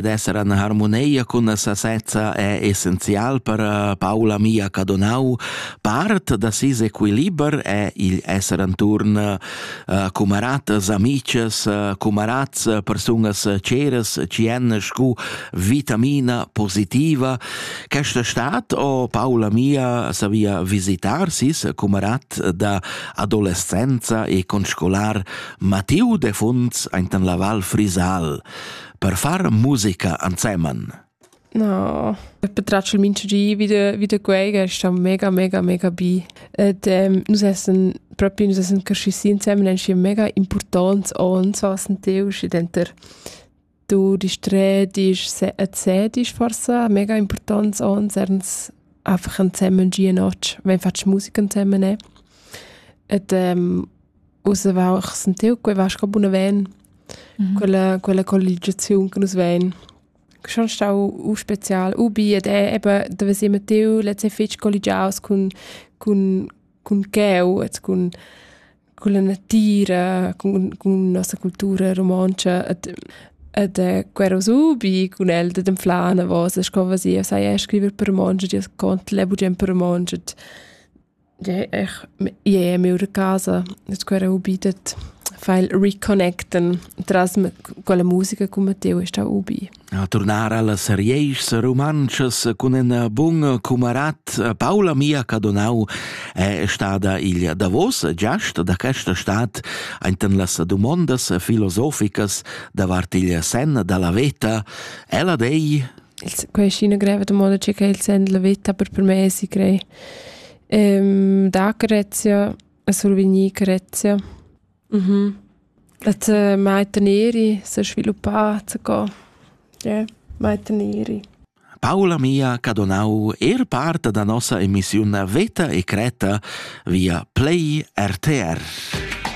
d'esser in harmonia cun la sasezza è essenzial per eh, Paula Mia Cadonau. Part da ses equiliber è il esser intorn uh, cumaratas, amices, uh, cumarats, persunas ceras ci èn scu vitamina positiva. Questa stat o Paula Mia savia visitar sis cumarat da adolescenza e conscolar Matilde Funz ainten la Val Frisal. per far musica ansemen. No, betraccio il mincio di vide vide quei che sta mega mega mega bi. Ed ähm, nus essen proprio nus essen cresciuti insieme ein mega importants und so was teus denter du dich dreh dich erzähl dich forse mega importants und erns einfach ansemen die Noche wenn fast Musik ansemen ne. Et ähm, Uss aveva ich sentiu quei va sco bunaven, mm -hmm. quella, quella colligiaziun che nus vein. Che schon stau u spezial, u bi, ed è eben, da si mettiu letze fitg colligiaus cun, cun, cun cheu, et cun, cun la natira, cun, cun nossa cultura romontscha, et, et eh, quero subi cun el de dem flana vos, sco va si, sai scriver per romontsch, di cont le bugen per romontsch, Ie er ie miur casa scu era ubi dad far il reconnecten tras quella musica cun Matteo è stà ubi. A turnar allas rieschs rumantschas cun ina bun cumarat Paula Mia Cadonau è stada il davos giast da questa stat enten las dumondas filosoficas davart il sen dalla veta. Ella dei il, quai è ina greva domanda che il send la vita per per me si crei. Ehm, da Grezia, survegnì Grezia. Mhm. Att äh, meiten eri se sviluppat go. Yeah, meiten eri. Paola mia ca donau er part da nossa emissiun Veta e Creta via Play RTR.